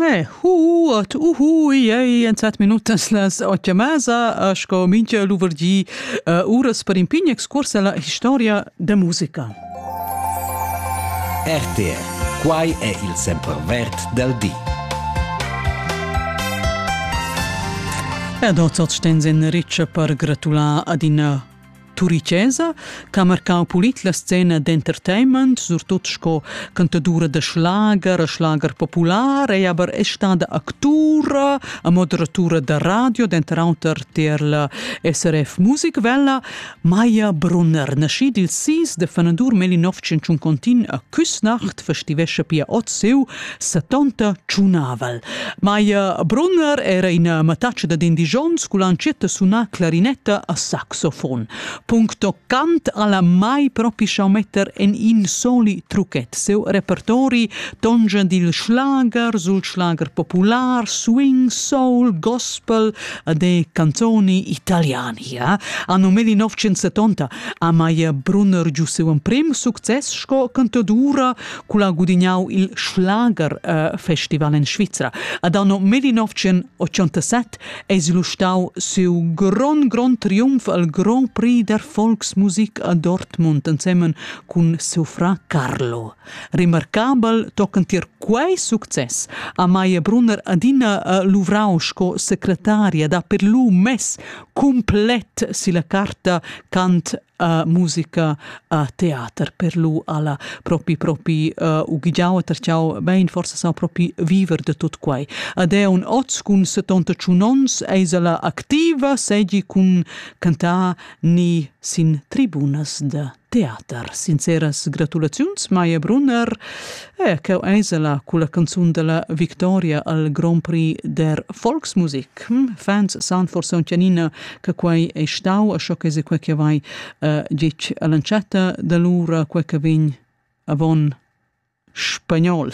Eh huot, uhu, ei en set minutas las otg e mesa, sco mincha luverdì, uras per in pign excurs alla historia da musica. RTR, quai è il sempervert del di. Ed oz sten sin ricce per gratular ad in Turicesa ch'ha marcau pulit la scena d'entertainment, surtut sco cantadura da schlager e schlager popular, ei aber è stada actura e moderatura da radio, denter auter tier la SRF Musikwelle. Maja Brunner, naschid il 6 de fanadur 1951 a Küsnacht, festivescha pia oz siu setonta tschunnavel. Maia Brunner era ina mattatsch da indigions cul ancietta sunà clarinetta a saxofon. Puncto cant alla mai propi schau metter en in soli truchet. Seu repertori tongia dil schlager sul schlager popular, swing, soul, gospel e de canzoni italiani. Ja? Anno meli 970 a Maia Brunner giu seu emprim success sco cantadura cul ha gudignau il Schlager äh, Festival in Svizra. Ad anno 1987 es il stau siu grond grond triumf al Grand Prix der Volksmusik a Dortmund insemmen cun seu fra Carlo. Remarcabel tochen tier quei success ha Maia Brunner adina äh, luvrau sco secretaria da per lu mess complet silla carta cant a musica a teater per lu alla propi propi uh, ughigiau e terciau bein forse sa propi viver de tot quai ad è un oz cun 75 ons eisela activa segi cun cantar ni sin tribunas de teater. Sinceras gratulaziuns, Maia Brunner, e eh, cheu eisela cu la canzun della Victoria al Grand Prix der Volksmusik. Hm, fans san forse un cianina che quai è stau a sco che se quel che vai uh, ditg all'entschatta da lura quel che vegn avon spagnol.